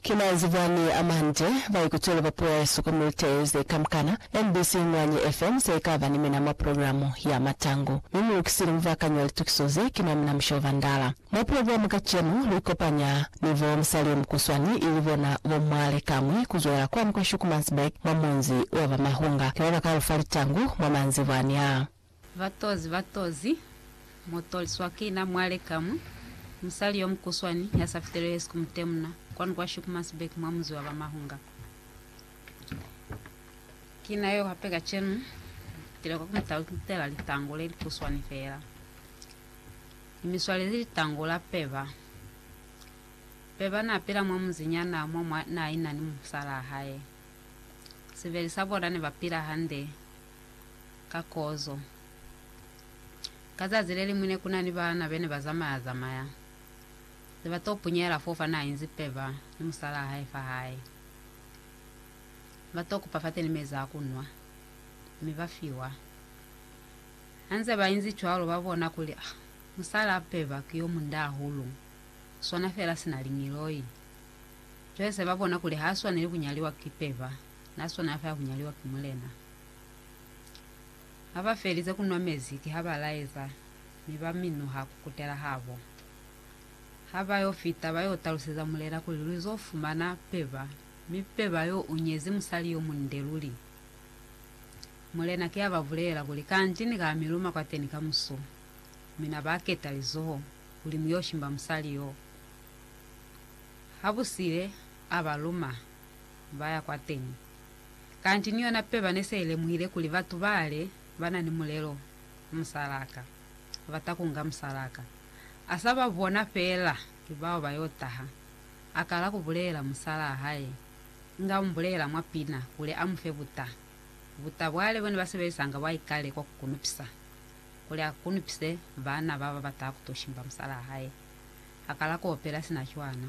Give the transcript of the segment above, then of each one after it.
Ki manzi bwani a mande, ba ikutwele ba puo ya hesu ku militeye ze kamkana. NBC Ingwanyi FM se ikaba ni mina mwa programo ya matangu. Mi mu lukisile mubakani wa litukiso ze, ki mwa mina musho ba ndala. Mwa programo kacenu, lu ikopanya ni bo musali mukuswani ili bona bo Mwale Kamwi ku zwelela kwani kwa Schoemannsburg mwa munzi wa ba Mahunga. Ki ba ba ka lu fa litangu mwa manzi bwani aa. Batozi, batozi, mu toliswa ki na mwale kamwi, musali yo mukuswani ya sa fitelwe hesi ku mutemuna, kwanu kwa Shikumasbek mwa munzi wa ba Mahunga. Ki na yo hape kacenu, mu fitile kwa ku mu talutela litango le likuswani fela. Ni mi swalezi litango la Peba. Peba na pila mwa munzi nyana mo mwa na ina ni musalaa hae. Sibeli sa bona ne ba pila hande, ka kozo. Ka zazi le liñwi ne ku na ni baana be ne ba zamaya-zamaya, ze ba t'o punyela fo fa n'a inzi peba ni musalaa hae fa hae. Ba t'o kupa fateni mezi a ku nwa, mi ba fiwa. Ha nze ba inzi cwalo, ba bona kuli, Ah, musalaa peba ki yo munda hahulu, u swana fela sina liñiloi. Cwale se ba bona kuli h'a swaneli ku nyaliwa ki peba. Na swana fa ya ku nyaliwa ki Mulena. Ha ba felize ku nwa mezi, kiha ba laeza, mi ba minuha ku kutela habo. Ha ba yo fita, ba yo taluseza Mulena kuli lu zo fumana peba, mi peba yo u nyezi musali yo munde luli. Mulena ki a ba bulela kuli, Kanti ni ka mi luma kwateni kamuso. Mi na ba keta lizoho, kuli mu yo shimba musali yo. Ha bu sile, a ba luma. ba ya kwateñi. Kanti ni yona peba ne se i lemuhile kuli batu bale ba na ni mulelo ku musalaka, ba ta kunga musalaka. A sa ba bona feela ki bao ba yo taha, a kala ku bulelela musalaa hae, inga u mu bulelela mwa pina kuli a mu fe buta. Buta bwa le bo ne ba sebelisanga bwa ikale kwa ku kunupisa. Kuli a kunupise bana ba ba bataha ku to shimba musalaa hae, a kala ku opela sina cwana.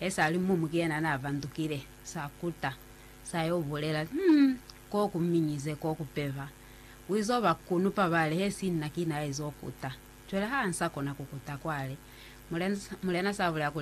He sa li mumu ki yena n'a vandukile, sa kuta, sa y'o bulela, Hum! K'o ku minyize, k'o ku peva. U iz'o ba kunupa bale, he si nna ki n'a iz'o kuta. Cwale ha a nsa kona ku kuta kwale. Mulena, mulena sa bulela kuli,